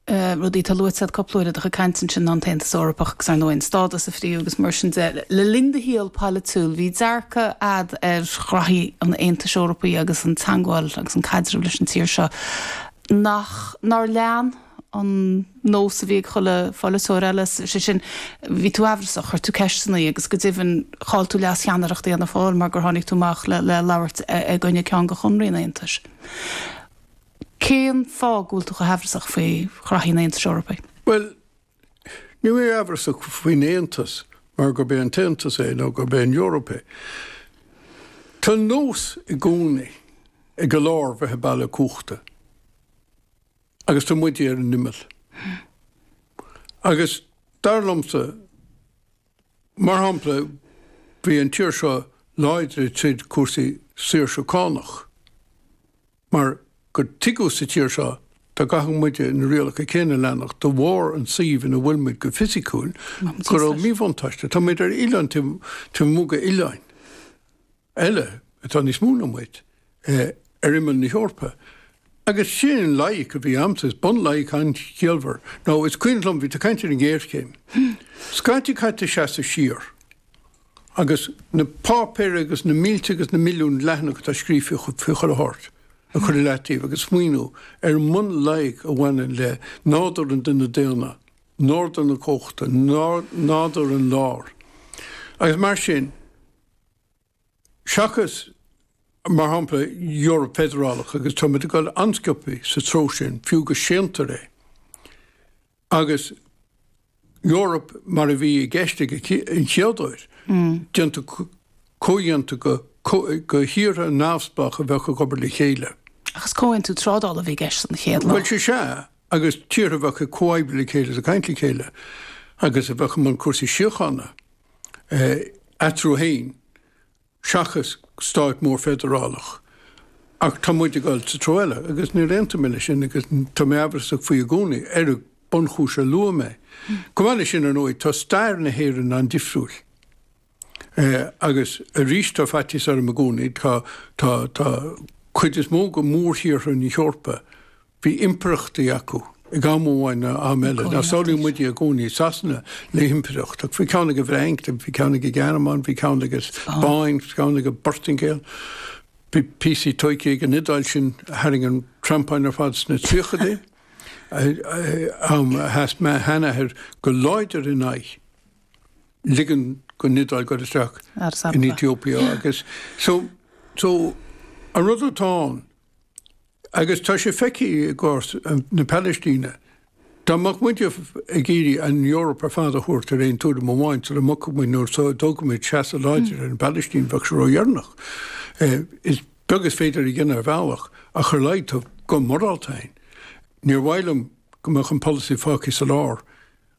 rudaí atá luaite agat cúpla uair i do chuid cainte ansin ná an tAontas Eorpach agus ar ndóigh an stádas oibre agus mar sin de. Le linn do shaol polaitiúil, bhí dearcadh agat ar ghraithí an Aontais Eorpaigh agus an teagmháil agus an caidreamh leis an tír seo nach nár lean an nós a bhí ag chuile pholaiteoir eile, sé sin, bhí tú aimhreasach, chuir tú ceisteanna agus go deimhin chaill tú leascheannaireacht Fhianna Fáil mar gur tháinig tú amach le labhairt i gcoinne ceann de chonarthaí an Aontais. Cén fáth go bhfuil tú chomh haimhreasach faoi ghraithí an Aontais Eorpaigh? Bhuel, níl mé aimhreasach faoin Aontas mar gurb é an tAontas é nó gurb é an Eoraip é. Tá an nós i gcónaí ag an lár bheith ag bailiú cumhachta agus tá muide ar an imeall. Agus dar liomsa, mar shampla, bhí an tír seo láidir i dtaobh cúrsaí saoirse cánach. Mar gur tuigeadh sa tír seo dá gcaithfeadh muide na rialacha céanna a leanacht de bharr an suíomh ina bhfuil muid go fisiciúil, go raibh míbhuntáiste. Tá muid ar oileán taobh amuigh d'oileán eile atá níos mó ná muid, ar imeall na hEorpa. Agus sin an loighic a bhí agamsa, is bunloighic an-chiallmhar. Nó is cuimhin liom, bhí tú ag caint ar an ngéarchéim. Scaití caithfidh tú seasamh siar. agus na páipéir agus na mílte agus na milliún leathanach atá scríofa faoi, cúl a thabhairt, a chur i leataobh agus smaoiniú ar an mbunloighic a bhaineann le nádúr an duine daonna, nádúr na cumhachta, nádúr an láir. Agus mar sin, seachas, mar shampla, Eoraip Feidearálach, agus tá muid ag dul an-sciobtha sa treo sin, fiú go séantar é, agus Eoraip mar a bhí i gceist an chéad uair, déanta comhdhéanta de thíortha neamhspleácha a bheadh ag obair le chéile. Ach is comhaontú trádála a bhí i gceist an chéad lá. Bhuel, sea, sea, agus tíortha a bheadh ag comhoibriú le chéile is ag caint le chéile, agus a bheadh i mbun cúrsaí síochána eatarthu féin. seachas stát mór feidearálach. Ach tá muid ag dul sa treo eile, agus níor aontaigh mé leis sin, agus tá mé amhrasach faoi i gcónaí, ar an bunchúis a luaigh mé. Chomh maith leis sin, ar ndóigh, tá stair na hÉireann an-difriúil. Agus arís, tá faitíos orm i gcónaí, tá, tá, tá cuid is mó de mhórthíortha na hEorpa, Bhí impireachtaí acu ag am amháin nó am eile. Now, samhlaíonn muide i gcónaí, Sasana, le himpireacht, ach bhí ceann ag an bhFrainc, bhí ceann ag an nGearmáin, bhí ceann ag an Spáinn, bhí ceann ag an bPortaingéil, bhí píosaí tógtha ag an Iodáil sin a tharraing an treampán ar fad sna tríochadaí, am a sheas mo sheanathair go láidir in aghaidh ligean don Iodáil dul isteach in Ethiopia. Agus so, an rud atá ann, Agus tá sé feicthe i gcás na Palaistíne. Dá mbeadh muid ag iarraidh an Eoraip ar fad a thabhairt ar aon tuairim amháin sula mbogfaidh muid nó sula dtógfaidh muid seasamh láidir ar an bPalaistín, bheadh sé ródheireanach. Is beag is féidir a dhéanamh ar bhealach ach ar a laghad tá guth morálta ann. Níor mhaith liom go mbeadh an polasaí fágtha sa lár.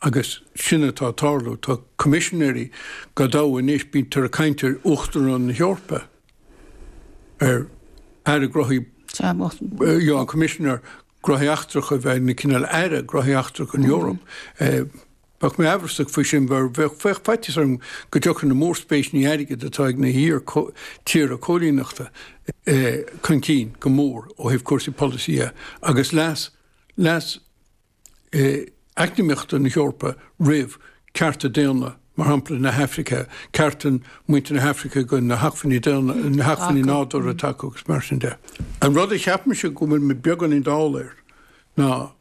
Agus sin atá ag tarlú. Tá coimisinéirí go deo anois, bítear ag caint ar Uachtarán na hEorpa, ar Aire Gnóthaí, an Coimisinéir Gnóthaí Eachtracha a bheith ina cineál Aire Gnóthaí Eachtracha don Eoraip. Bheadh mé amhrasach faoi sin, mar bheadh faitíos orm go dtiocfadh na mórspéiseanna airgid atá ag na hiar-tíortha cóilíneachta chun cinn go mór ó thaobh cúrsaí polasaí dhe, agus leas eacnamaíochta na hEorpa roimh cearta daonna, mar shampla na hAifrice, cearta muintir na hAifrice go na hacmhainní daonna, na hacmhainní nádúrtha atá acu agus mar sin de. An rud a cheapaimse go bhfuil mé beagáinín dall air ná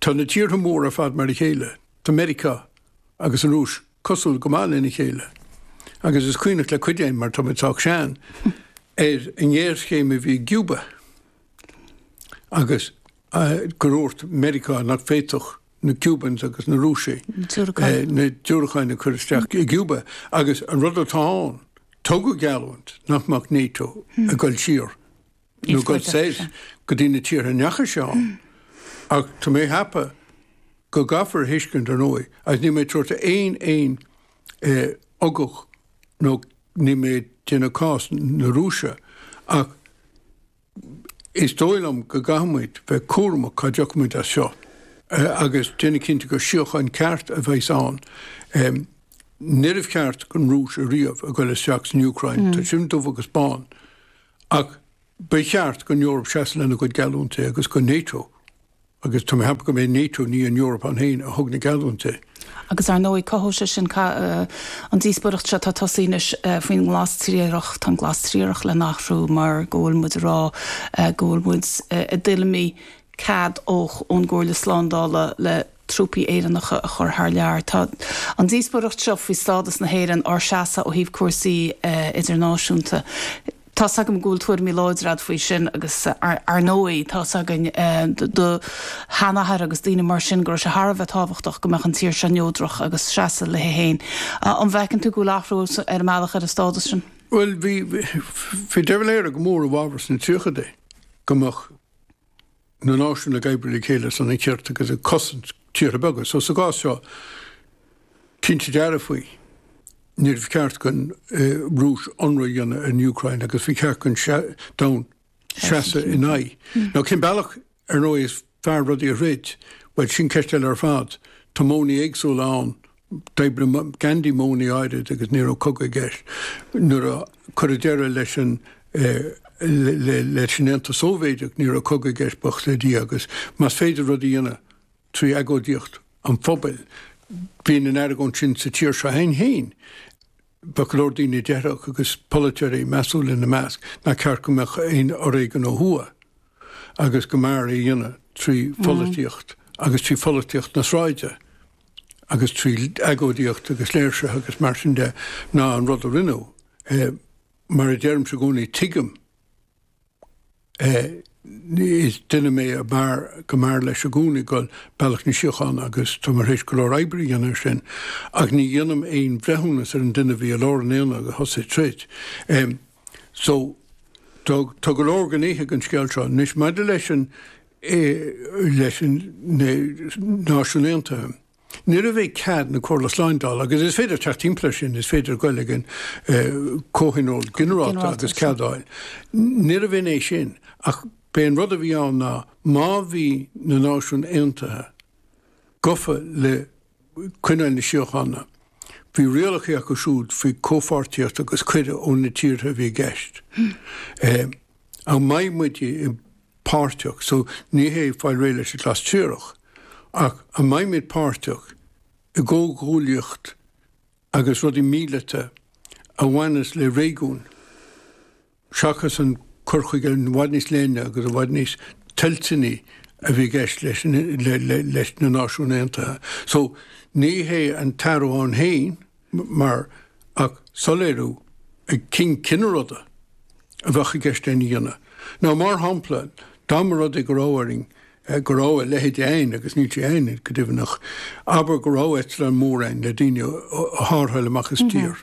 tá na tíortha móra ar fad mar a chéile, tá Meiriceá agus an Rúis cosúil go maith lena chéile, agus is cuimhneach le cuid againn mar tá mé sách sean ar an ngéarchéim a bhí i gCúba agus gur dhúirt Meiriceá nach bhféadfadh na Cubans agus na Rúisigh na diúracáin a chur isteach i gCúba. Agus an rud atá ann, tugadh geallúint nach mbeadh NATO ag dul siar, nó ag dul soir, go dtí na tíortha a ndeachaigh sé ann. Ach tá mé ag ceapadh go gcaithfear a thuiscint, ar ndóigh, agus níl mé ag tabhairt aon aon ugach nó níl mé ag déanamh cás na Rúise, ach, Is dóigh liom go gcaithfimid bheith cúramach cá dtéann muid as seo agus déanamh cinnte gur síocháin cheart a bheas ann. Níorbh cheart don Rúis ariamh a ghoil isteach san Úcráin, tá sin dubh agus bán, ach ba cheart don Eoraip seasamh lena gcuid geallúintí agus do NATO. Agus tá mé ag ceapadh go mba é NATO, ní an Eoraip ann féin, a thug na geallúinti. Agus, ar ndóigh, cothóidh sé sin an díospóireacht seo atá tosaithe anois faoin nGlas Triarach. Tá an Glas Triarach le n-athrú mar go bhfuil muid ag rá go bhfuil muid i dtuilleamaí cead ón gComhairle Slándála le trúpaí Éireannacha a chur thar lear. Tá an díospóireacht seo faoi stádas na hÉireann, ár seasamh ó thaobh cúrsaí idirnáisiúnta, Tá's agam go bhfuil tuairimí láidre agat faoi sin agus ar ndóigh tá's againn do sheanathair agus daoine mar sin go raibh sé thar a bheith tábhachtach go mbeadh an tír seo neodrach ag seasamh léithi féin. An bhfeiceann tú go bhfuil athrú ar an mbealach ar an stádas sin? Bhuel, bhí De Valera go mór i bhfabhar sna tríochaidí go mbeadh na náisiúin ag oibriú le chéile ar son an chirt agus ag cosaint tíortha beaga. So sa gcás seo, cinnte dearfaí, níor ceart don eh, Rúis ionradh a dhéanamh ar an Ucráin agus bhí ceart don sea, domhan seasamh in aghaidh. Mm. Nó cén bealach ar nó is fearr rudaí a throid, bhuel sin ceist eile ar fad, tá módhanna éagsúla ann D'oibrigh Gandhi módhanna áirid agus ní raibh cogadh i gceist. Nuair a cuireadh deireadh leis an Aontas Sóivéideach, ní raibh cogadh i gceist, buíochas le Dia, agus más féidir rud a dhéanamh trí agóidíocht an phobail, bíonn an argóint sin sa tír seo a'inn féin. Bheadh go leor daoine a déarfadh, agus polaiteoirí measúla ina measc, nach ceart go mbeadh aon fhoréigean ó thuaidh agus go mb'fhearr é a dhéanamh trí pholaitíocht agus trí pholaitíocht na sráide. agus trí agóidíocht agus léirsithe agus mar sin de, ná an rud a rinneadh. Mar a deirimse i gcónaí, tuigim is duine mé a mar, go mb'fhearr leis i gcónaí dul bealach na síochána agus tá mé tar éis go leor oibre a dhéanamh air sin, ach ní dhéanaim aon bhreithiúnas ar an duine a bhí i lár an aonaigh a thosaigh troid. So, tá, tá go leor gnéithe don scéal seo. Anois, maidir leis an, leis an, na Náisiúin Aontaithe, ní raibh i gcead na Comhairle Slándála, agus is féidir teacht timpeall air sin, is féidir goil ag an, Comhthionól Ginearálta agus ceadáil. Níorbh in é sin, ach b'é an rud a bhí ann ná, má bhí na Náisiúin Aontaithe gafa le coinneáil na síochána. Bhí rialacha acu siúd faoi chomhpháirtíocht agus cuidiú ó na tíortha a bhí i gceist. Ach an mbeidh muid páirteach, so ní hé fáil réidh leis an nglas triarach, ach an mbeidh muid páirteach i gcomhghuaillíocht agus rudaí míleata a bhaineas le réigiún? Seachas an cur chuige i bhfad níos leithne agus i bhfad níos toilteanaí a bhí i gceist leis na Náisiúin Aontaithe so, ní hé an t-athrú ann féin mar ach soiléiriú ar cén cineál rudaí a bheadh i gceist lena dhéanamh. Nó mar shampla, dá mba rud é go raibh orainn, go raibh a leithéid ann agus níl sé ann, go deimhneach, abair go raibh eitleán mór ann le daoine a thárrtháil amach as tír.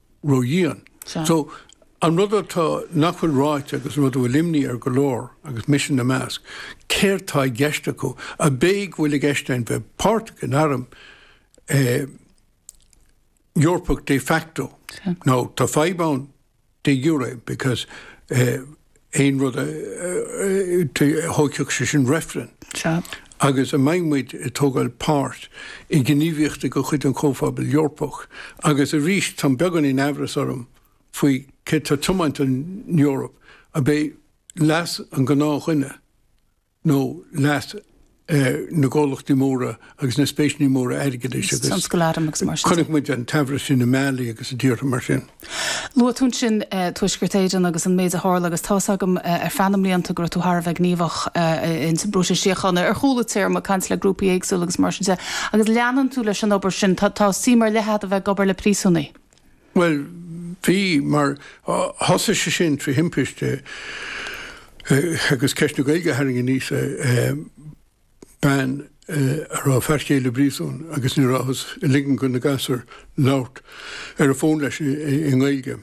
ródhian. So, an rud atá, nach bhfuil ráite agus an rud a bhfuil imní ar go leor, agus mise ina measc, céard tá i gceist acu? Ab é go bhfuil i gceist a'inn bheith páirteach in arm eh, Eorpach de facto. Now, tá fadhb ann de jure, because eh, aon rud a thógfadh sé sin reifreann. Sea. Agus a mbeidh muid ag tógáil páirt i ngníomhaíochtaí de chuid an Chomhphobail Eorpach, agus arís tá beagán den amhras orm faoi céard atá tiomáint an Eoraip, ab é leas an gnáthdhuine, nó leas na gcomhlachtaí móra agus na spéiseannaí móra airgeadais agus tionscal arm agus mar sin. Chonaic muid an t-amhras sin i mbealaí agus i dtíortha mar sin. Luaigh tú ansin Tuaisceart Éireann agus an méid a tharla agus tá's agam ar feadh na mblianta go raibh tú thar a bheith gníomhach in san bpróiseas síochána. Ar chúla téarmaí, caint le grúpaí éagsúla agus mar sin de agus leanann tú leis an obair sin. Tá suim ar leith agat a bheith ag obair le príosúnaigh. Bhuel, bhí, mar thosaigh sé sin trí thimpiste agus ceist na Gaeilge a tharraing aníos é, bean a raibh a fear chéile i bpríosún agus ní rabhthas ag ligean do na gasúir labhairt ar an bhfón leis i nGaeilge.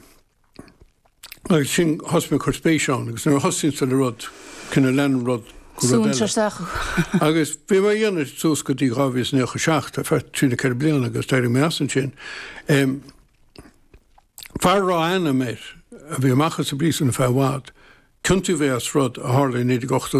Agus sin, thosaigh mé ag cur spéis ann, agus nuair a thosaíonns tú le rud, cineál leanann rud go rud eile. Súnn isteach thú. Agus bhí mé ag déanamh suas go dtí 2017, ar feadh 34 bliana, agus d'éirigh mé as ansin. Fear a raibh a-ainm air, a bhí amach as an bpríosún ar feadh i bhfad, ciontaíodh é as rud a tharla i 1982.